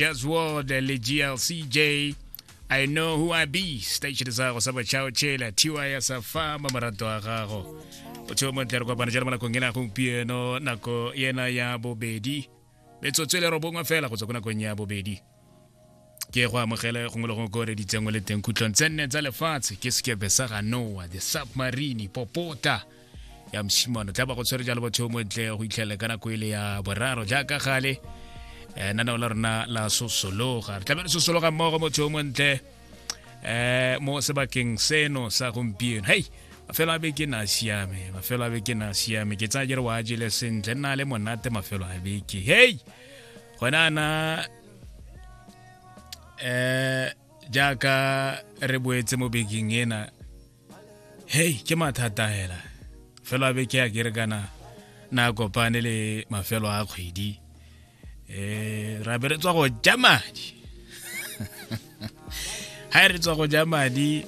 Yes, World, le GLCJ. I know who I be. Station sa gago sa bachao chela. Tiwa ya sa fama marato a gago. O tseo mo ntlere kopana jalo malakong ena gompieno nako ena ya bobedi. Metsotso e le robongwe fela go tswa ko nakong ya bobedi. ke go amogele gongwe le gongwe ko re ditsengwe le teng khutlong tse nne tsa lefatshe ke sekepe sa ga noa the submarine popota ya mshimano tla ba go tshwere jalo batho mo ntle go itlhele ka nako ile e ya boraro jaaka gale eh nana ola rena la sosologa re tlamele sosologa mmogo motho mo ntle eh mo sebakeng seno sa gompieno hey mafelo a beke na siame mafelo a beke na siame ke tsaya jere wa jele sentle nna le monate mafelo a beke hey gona na eh jaaka re boetse mo bekeng ena hei ke mathata hela fela be ke a kere kana na kopane le mafelo a kgwedi um ra be re tswa go ja madi ga e re tswa go ja madi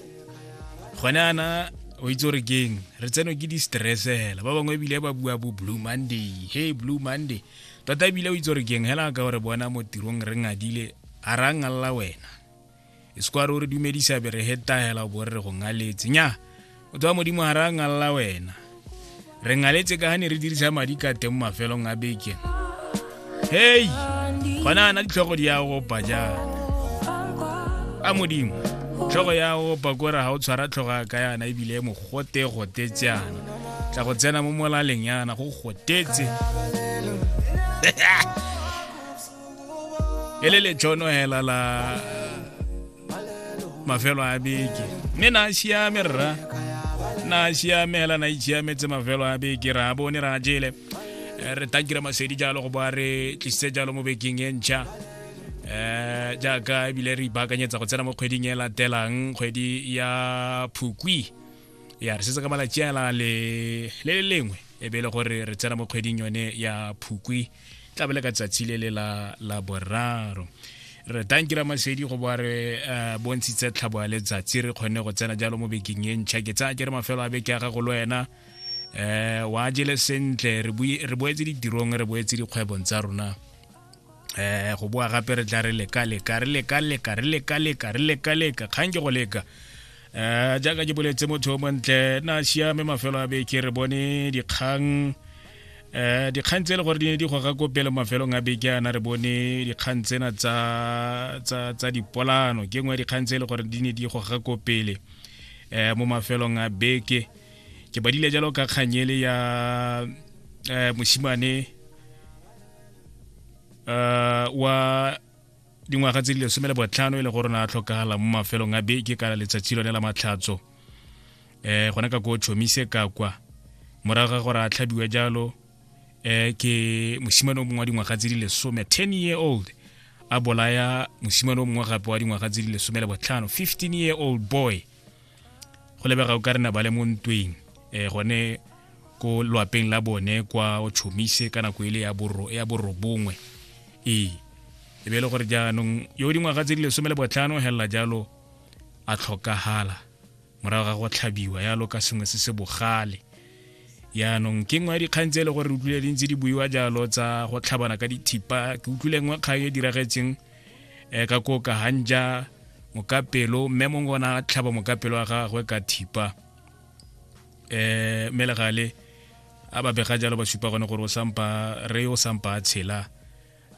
gone ana o itse gore keng re tseno ke di-stress hela ba bangwe ebile ba bua bo blue monday hey blue monday tota ebile o itse gore keng hela ka gore bona mo tirong re ngadile a ra ngalla wena e se kwa re o re dumedisa be re hetahela o bo re re go ngaletse nya o tswa modimo ga re a ngalla wena re ngaletse ka ga ne re dirisa madi ka teng mo mafelong a beke hei gona ana ditlhogo di ya opa jaana a modimo tlhogo ya opa kore ga o tshwara tlhogo ya ka yana ebile e mogote gotetse yana tla go tsena mo molaleng yana go gotetse e le letšono hela la mafelo a beke mme na siame rra na siame hela na itshiametse mafelo a beke ra bone ra jele eh, re takira masedi jalo go ba re tlisitse jalo mo bekeng e ntšha um jaaka ebile re ipaakanyetsa go tsena mo kgweding e latelang kgwedi ya phukwi ya re setse ka malatsi a le le lengwe e be e le gore re tsena mo kgweding yone ya phukwi tla bele ka tsatsi le le la la boraro re tanki ra masedi go ba re eh, bontshitse tlhabo ya letsatsi re kgonne go tsena jalo mo bekeng e ntšha ke tsaya ke re mafelo a beke ya gago le wena eh wa jele sentle re boetse ditirong re boetse dikgwebong tsa rona eh go boa gape re tla re leka leka re leka leka re leka leka re leka leka kgang ke go leka um jaaka ke boletse motho o montle na siame mafelo a beke re bone dikgang um dikgang tse e le gore di ne di goga ko pele mafelong a beke ana re bone dikgang tsena tsa dipolano ke nngwe ya dikgang tse e le gore di ne di goga ko pele um mo mafelong a beke ke badile jalo ka kganyele ya um mosimane um wa dingwaga tse di lesome le botlhano e le gore na tlhokagala mo mafelong a beke ka letsatsi lone la matlhatso um gone ka ko chomise ka kwa morago ga gore a tlhabiwa jalo um ke mosimane o mongwe wa dingwaga tse di lesome ten year old a bolaya mosimane o mongwe gape wa dingwaga tse di lesome le botlhano fifteen year old boy go lebega o ka rena ba le mo ntweng um gone ko lwapeng la bone kwa o chomise ka nako ele ya borobongwe ee e be e le gore jaanong yo dingwaga tse di lesome le botlhano helela jalo a tlhokagala morago ga go tlhabiwa yalo ka sengwe se se bogale yaanong ke nngwe ya dikgang tse e le gore re utlwile dintse di buiwa jalo tsa go tlhabana ka dithipa ke utlwile nngwe kgang e diragetseng um ka ko ka hanja mokapelo mme mongwe ona a tlhaba mokapelo wa gagwe ka thipa um mme legale a ba bega jalo ba supa gone gore o sampa re o sampa a tshela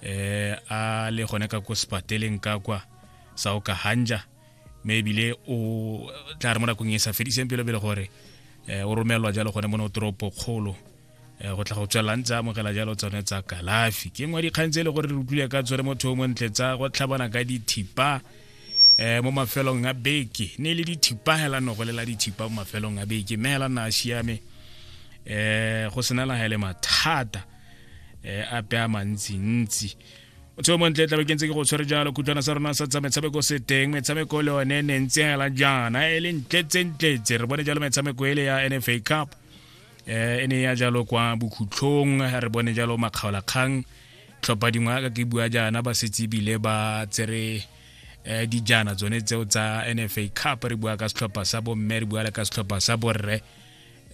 um a le gone ka ko sepateleng ka kwa sa o ka hanja mme ebile o tla re mo nakong e sa fediseng pelo pele gore um o romelelwa jalo gone mo ne o toropo kgolo Eh, go tla go tswelang tsa amogela jalo tsone tsa kalafi ke nngwe dikgang tse e le gore re utlwile ka tswere motho o montle tsa go tlhabana ka dithipa um mo mafelong a beke ne e le dithipa hela no go lela dithipa mo mafelong a beke mme hela na a siame um go sena la hele mathata um ape a mantsintsi motho o montle tlabe ke ntse ke go tshwere jalo khutlwana sa rona sa tsa metshameko se teng metshameko le one ne ntse hela jaana e le ntletsentletse re bone jalo metshameko ele ya nfa cup eh e ne ya jalo kwa bokhutlhong re bone jalo makgaolakgang tlhopha dingwe ka ke bua jaana ba setse bile ba tsere eh dijana tsone tseo tsa NFA Cup re bua ka setlhopha sa bomme re bua le ka setlhopha sa borre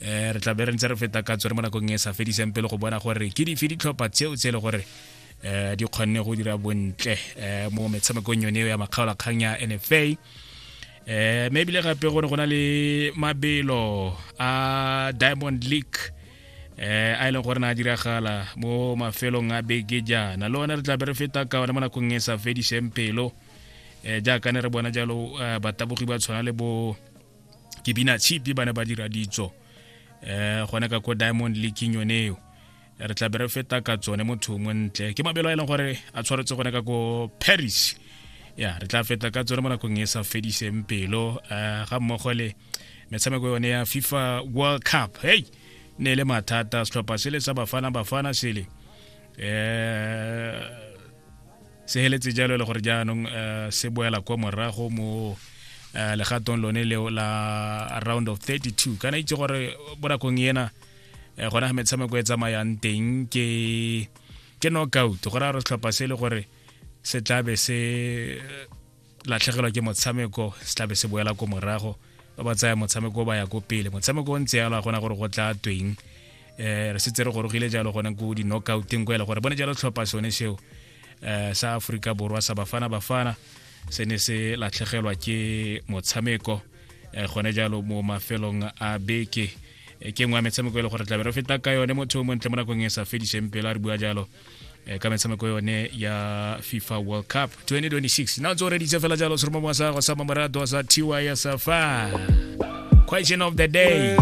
eh re tla be re ntse re feta ka tsone mo nakong e sa fediseng pele go bona gore ke dife ditlhopha tseo tse e le gore eh di kgonne go dira bontle eh mo metshamekong yone ya makgaolakgang ya NFA eh maybe le gape gore go na le mabelo a diamond league eh a e leng gore na diragala mo mafelong a beke jaana le one re tla be re feta ka one mo nakong e sa fediseng pelo eh jaaka ne re bona jalo eh, batabogi ba tshwana le bo kebina chipi ba ne ba dira ditso eh gone ka ko diamond leaking yone eo re tla be re feta ka tsone motho mongwe ntle ke mabelo a e leng gore a tshwaretse gone ka ko paris ya re tla feta ka tsone mo nakong e sa fediseng pelo eh, ga mmogo le metshameko yone ya fifa world cup hey ne e le mathata setlhopha se le sa bafana bafana sele um se heletse jalo e le gore jaanong eh, se boela kwa morago mo legatong lone leo la round of 32 kana itse gore bonakong ena eh, gona ga metshameko e tsamayang teng ke ke knockout go raya gore setlhopha se e le gore se tlabe se eh, latlhegelwa ke motshameko se tlabe se boela ko morago ba ba tsaya motshameko o ba ya ko pele motshameko o ntse yalo a gona gore go tla tweng um re setse re gorogile jalo gone ko di-knockouteng ko e le gore bone jalo tlhopha sone seo um sa aforika borwa sa bafana bafana se ne se latlhegelwa ke motshameko um gone jalo mo mafelong a beke e ke nngwe ya metshameko e le gore tlabe re feta ka yone motho o montle mo nakong e sa fediseng pele a re bua jalo Eh, ka metshameko yone ya fifa world cup 2026 na tso reditse fela jalo seromamo sa go sa mamorato sa tiwa ya safa question of the day